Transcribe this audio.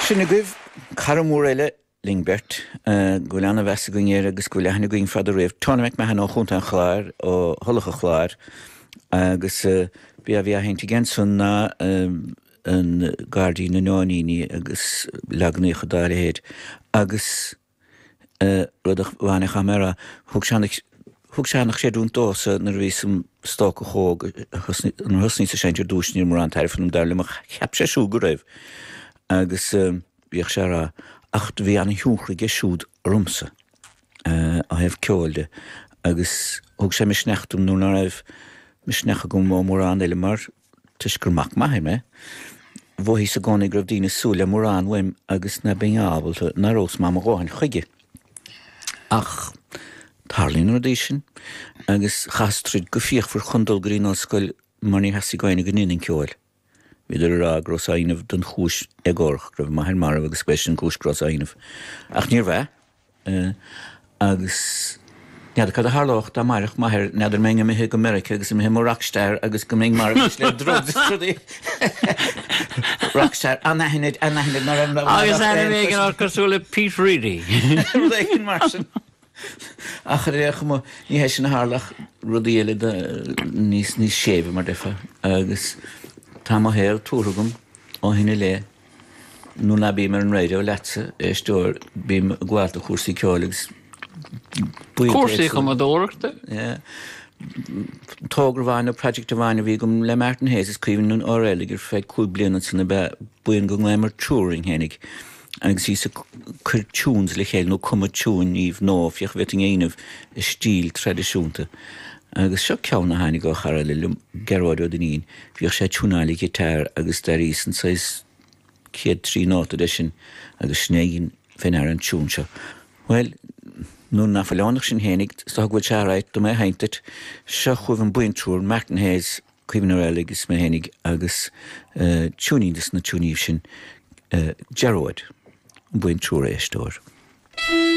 Sin agaibh cara mór eile linn beirt, go bhfuil an-mheas againn air agus go bhfuil aithne againn fada riamh, Tony McMahon ó Chontae an Chláir, ó Thulach an Chláir, agus b'é a bhí á sheinnt aige ansan ná an Gairdín na Nóiníní agus leaganacha dá leithéid agus, rud a bhainfeadh amach mar a thug sé an thug sé an chreidiúint domhsa nuair a bhíos im stócach óg nuair a thosnaíos ag seinnt ar dtús níor mhór an tairbhe ionam dar liom ach cheap sé siúd go raibh agus bhíodh sé ag rá ach bhí an-tionchar aige siúd ormsa ó thaobh ceoil de agus thug sé misneach dom nuair ná raibh misneach agam ó mórán eile mar Toisc gur mac m'athar mé, mhothaíos i gcónaí go raibh daoine ag súil le mórán uaim agus ná beinn ábalta, ná rabhas maith mo dhóthain chuige. Ach tarlaíonn na rudaí sin agus chaitheas troid go fíochmhar chun dul go dtí an ollscoil mar níor theastaigh ó éinne go ndéanfainn ceol. Bhíodar ag rá go rabhas á dhéanamh don chúis éagórach, go raibh m'athair marbh agus gurb shin an chúis go rabhas á dhéanamh. Ach níorbh ea. Agus n'fheadar cad a tharlódh dá mairfeadh m'athair n'fheadar an mbeinn imithe go Meiriceá agus imithe i mo rockstar agus go mbeinn marbh anois le drugs is rudaí rockstar anaithnid anaithnid mar am raibh Agus mairfeadh ainm éigin ort cosúil le Pete Reedy. rud éigin mar sin Ach ar aon chuma ní hé sin a tharla ach rudaí eile do níos níos séimhe mar a déarfá agus tá mo shaol tabhartha agam ó shin i leith. Nuair ná bím ar an raidió leatsa, a éisteoir, bím ag gabháil do chúrsaí ceoil agus buíonta éagsúla. Cúrsaí cumadóireachta? Yeah. Togra amháin nó project amháin a bhí agam le Martin Hayes is Caoimhín Ó Raghallaigh ar feadh cúig bliana ansan ab ea buíon go nglaomar Triúr orainn fhéinig agus bhíos ag cur tunes le chéile nó cumadh tiúiníbh nó féach an bhféadfainn é a dhéanamh i stíl traidisiúnta agus seo ceann a tháinig ó chara eile liom, Gearóid Ó Duinnín. Bhíodh sé ag tiúnáil a ghiotáir agus d'airíos an saghas chéad trí nóta de sin agus sin é bheinn fhear an tiún seo. Bhuel, nuair ná fuil ann ach sinn fhéinig, is dócha go bhfuil sé all right dom é a sheinnt duit. Seo chugaibh an buíon Triúr, Martin Hayes, Caoimhín Ó Raghallaigh is mé fhéinig agus tiúinín de na tiúiníbh sin, Gearóid, an buíon Triúr, a éisteoir.